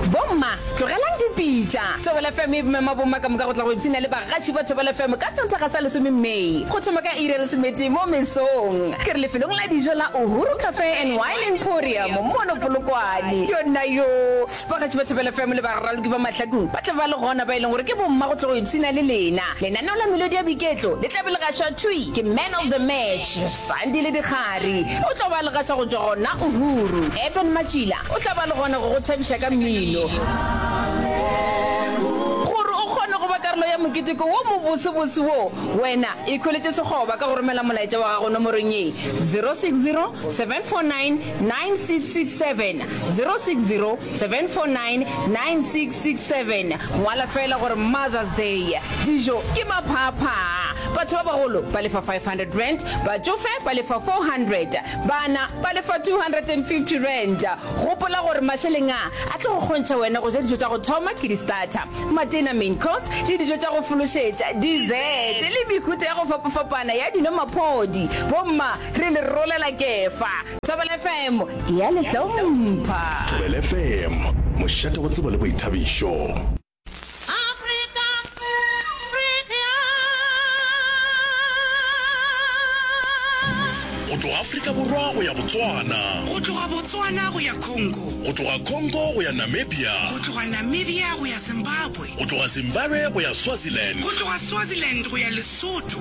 Bomma, tlogelang dipitša. Thobela FM e mema bomma ka moka go tla go ipshina le bagaši ba Thobela FM ka Sontaga sa lesome May go thoma ka iri ya lesomete mo mesong. Ke re lefelong la dijo la Uhuru Cafe and Wine Emporium mono Polokwane. Yonnayoo! Bagaši ba Thobela FM le baraloki ba mahlakong ba tla ba le gona ba e leng gore ke bomma go tla go ipshina le lena. Lenaneo la melodi ya boiketlo le tla be le gašwa thwi ke Man of the Match. Sandi le Dikgari o tlo ba legatša go tšwa gona Uhuru. Eben Matšila o tla ba le gona go go thabiša ka mmino. Gore o kgone go ba karolo ya moketeko wo mobosebose wo, wena ikhweletše sekgoba ka go romela molaetša wa gago nomorong ye, 060 749 9667 060 749 9667 Ngwala feela gore Mother's Day, dijo ke maphaaphaa, batho ba bagolo ba lefa R500, batšofe ba lefa R400, bana ba lefa R250. Gopola gore mašeleng a a tlo go kgontšha wena go ja dijo tša go thoma ke di-starter, matena, main course, le dijo tša go fološetša, dessert, le mehuta ya go fapafapana ya dino, maphodi, bomma, Re le rolela Kefa. Thobela FM e a le hlompha. Thobela FM, mošate wa tsebo le boithabišo. Go tloga Afrika Borwa go ya Botswana. Go tloga Botswana go ya Congo. Go tloga Congo go ya Namibia. Go tloga Namibia go ya Zimbabwe. Go tloga Zimbabwe go ya Swaziland. Go tloga Swaziland go ya Lesotho.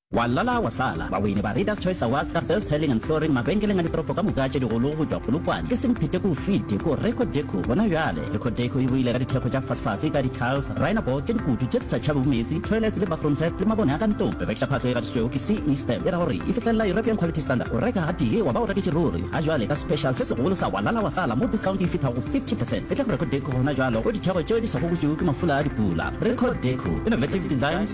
Wa lala wa sala. Bawini ba Readers Choice Awards ka Best Tiling and Flooring mabenkeleng a ditoropo ka moka a tše digolo go tšwa Polokwane ke semphete k'o fite k'o Reco Deco gona bjale. Reco Deco e ruile ka dithekgo tša fasefase ka di-tiles, rhino board tše dikutu tše tse sa tšhabego meetse, toilets le bathroom set le mabone a ka ntlong. Re rekiša phatlo e gatišitšwego ke CE stamp e ra gore e fihlelela European Quality Standard. O reka gatee wa ba o reketše ruri. Ga jwale ka special se segolo sa Wa lala wa sala mo discount e fithago go 50 percent e tla go Reco Deco gona bjalo k'o dithekgo tšeo di sa gobotšwego ke mafula a dipula. Reco Deco, Innovative Designs,